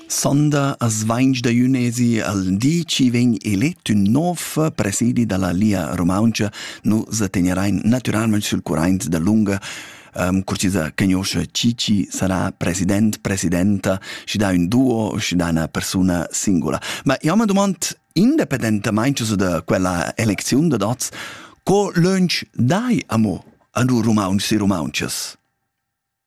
Sonda as vainch da Junesi al di chi vegn elet ün nov presidi da la Lia Rumauntscha. Nu sa tegnerein natüralmaing sül curraint dalunga. Um, curtisa cagnoscha chi chi sarà president, presidenta, schi dà ün duo, schi dà üna persuna singula. Ma io m'ha dumand, independentamaing so da quella elecziun da dats, co lönch dai amo a nu rumauntsi rumauntsas?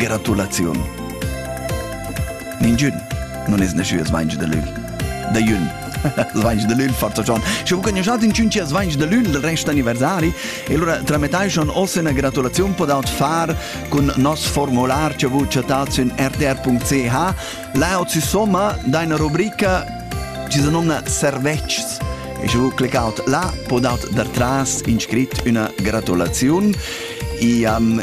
Gratulaziun. Ningün non es neschius vaingi da lügl. Da jün. Svaingi da lügl, forza John. Sche vos cognochat in cinci svaingi da lügl del rest anniversari, e allora tramettai schon ossa una gratulazione pod aut far cun nos formular che vu chattat sün rtr.ch laut si somma d'una rubrica ci se nomna serveccs. E sche vu cliccaut là pod aut dar tras inscrit una gratulazione e um,